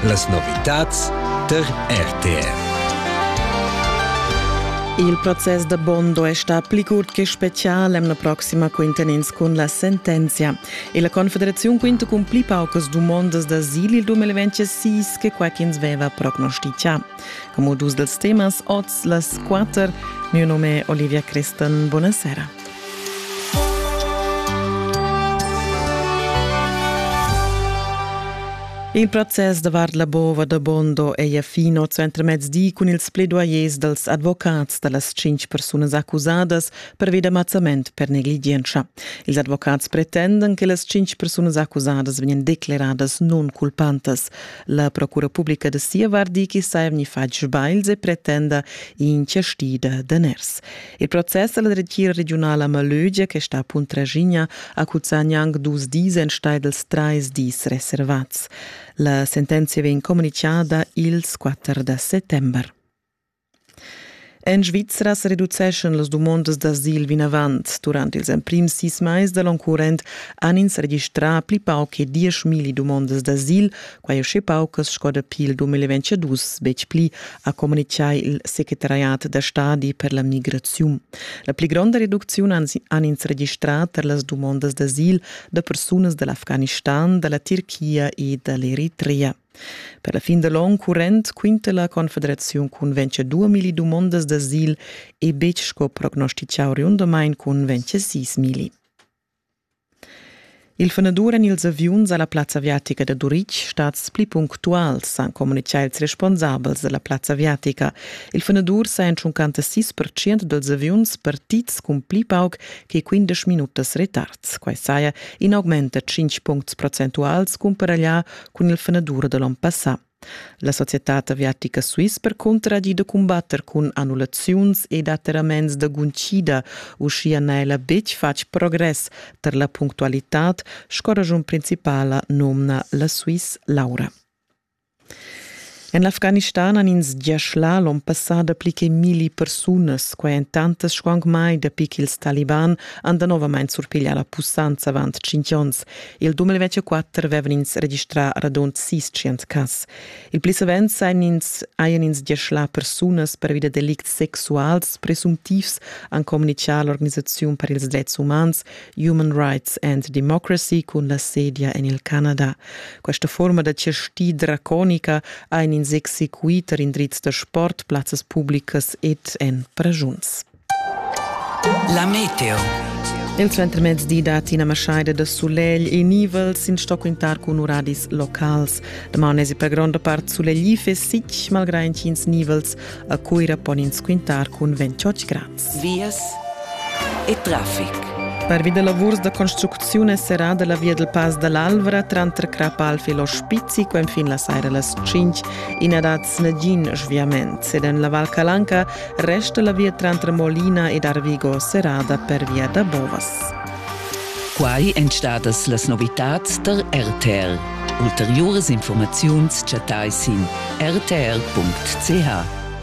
Las novitads tar RTR. Il process da Bondo è stà pli curt che special l'emna proxima quintenins cun la sentenzia e la Confederaziun quinta cun pli paucas dumondas d'asil il 2006 che quai ch'ins veva prognostizià. Como dus dels temas oz las quater. Mio nome è Olivia Crestan. Buonasera. Il process davart la bova da Bondo è fino zu entremezdi cun ils pledoyers dels advocats da las cinc persunas accusadas pervi da mazzament per negligienza. Ils advocats pretendan che las cinc persunas accusadas vegnan declaradas non culpantas. La procura publica da sia vart di che saja vegni fatg sbagls e pretenda inchiastida daners. Il process dalla dretgira regiunala a Malögia che sta a Puntraschigna accuzzagna anc dus dis enstagl dels trais dis reservats. La sentenzia vegn communichada ils 4 da settember. En Svizra sa reduceschan las dumondas d'asil vinavant. Durant ils emprims sis mais da l'onn current han ins registrà pli pauc che dieschmilli dumondas d'asil, quai uschè paucas sco dapi il 2022, betg pli, ha communitgà il secretariat da stadi per la migraziun. La pli gronda reducziun han ins registrà tar las dumondas d'asil da persunas da l'Afganistan, da la Tirchia e da l'Eritrea. Per la fin da l'onn current quinta la Confederaziun cun vencer 2000 dumondas d'asil e betg sco prognostitgà oriundamain cun vencer 6000. Il fenadur en ils aviuns a la plazza aviatica da Turitg stads pli punctuals, han communitgà ils responsabels da la plazza aviatica. Il fenadur sa en 56% dals aviuns partids cun pli pauc che 15 minutas retards. Quai saja in augment da 5 puncts procentuals cumparaglià cun il fenadur da l'onn passà. La societad aviatica Swiss percunter ha gì da cumbatter cun annullaziuns ed atterraments da guncida, uschia n'ha ella betg fatg progress tar la punctualitad, sco raschun principala nomna la Swiss Laura. En l'Afganistan han ins gia schlà l'onn passà dapli che milli persunas, quai en tantas sco anc mai dapi ch'ils taliban han danovamain surpiglià la pussanza avant tschintg onns. Il 2024 avevan ins registrà radund sis tschient cas. Il pli savens hajan ins, hajan ins gia schlà persunas pervi da delicts sexuals presuntivs, han communitgà l'organisaziun per ils dretgs umans, Human Rights and Democracy cun la sedia en il Canada. Questa forma da chasti draconica ha in ins exequiter indrizs da sport, plazzas publicas ed en pragiuns. La meteo. Il suentermezdi da Tina Maschaida da sulegl e nivels in sto quintar cun uradis locals. Damani si per gronda part sulegl e fesic, malgrà intgins nivels a Cuira pon ins quintar cun 28 grad. vias e traffic. Pervi da lavurs da construcziun è serrada la via dal Pass da l'Alvra tranter Crapalf e l'Ospizi quenfin la saira las 5. I n'ha dat nagin sviament ed en la Val Calanca resta la via tranter Molina ed Arvigo serrada per via da bovas. Quai èn stadas las novitads tar RTL. Ulteriuras informaziuns chattai sin rtl.ch.